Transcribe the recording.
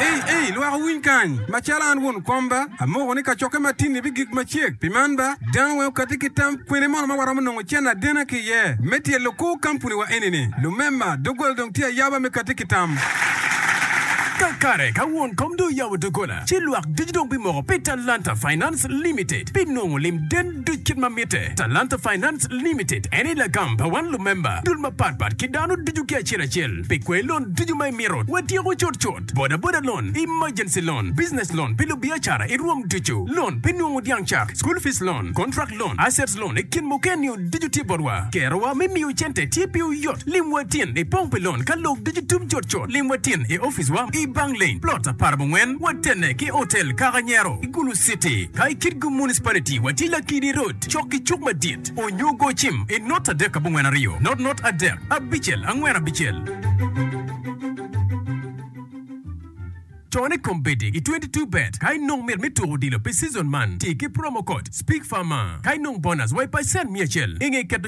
Ei, ei, lwak owiny kany! Macalo an won kom ba, amoko ni kacokke matini bigik macek. Pi man ba, dano weng okatti ki tam, kwene mono ma waromo nongo cen adena ki iye me tyelo kor kampuniwa eni-ni? Lumema, doggola dong tye ayaba me katti ki tam. Kakare, ka won kom dong oyabo doggola, ci lwak ducu dong bimoko pi Talanta Finance Limited, binongo lim den. Duc kit ma mitte. Talanta Finance Limited eni lagam pa wan lumemba dul mapat pat ki dano ducu ki acel acel pi kwai lon ducu ma imito. Watyeko cut cut, boda boda loan, emergency loan, business loan pi lubiacara i rwom ducu, loan pi nungu dyang cak, school fees loan, contract loan, assets loan i kin mukene-niu ducu tye botwa. Kerowa me miyo cente tye piwu yot. Lim wa tin i pong pi lon ka lok ducu tum cut cut. Lim wa tin i ofice wa i Bang Lane, plot apar abongwen, watenne ki Hotel Kaka Nyero. City, ka i Kitgum Municipality watye Lakidi Road cok ki cuk madit, onyo go cim i not adek abongwen aryo, not not adek abicel angwen abicel. Ton i kombeddi i twenty two bet ka inong mit me tuko odilo pi season man, ti ki promo code, Speak Far Mar, ka inong bonus wa i pacent miya acel inge keto.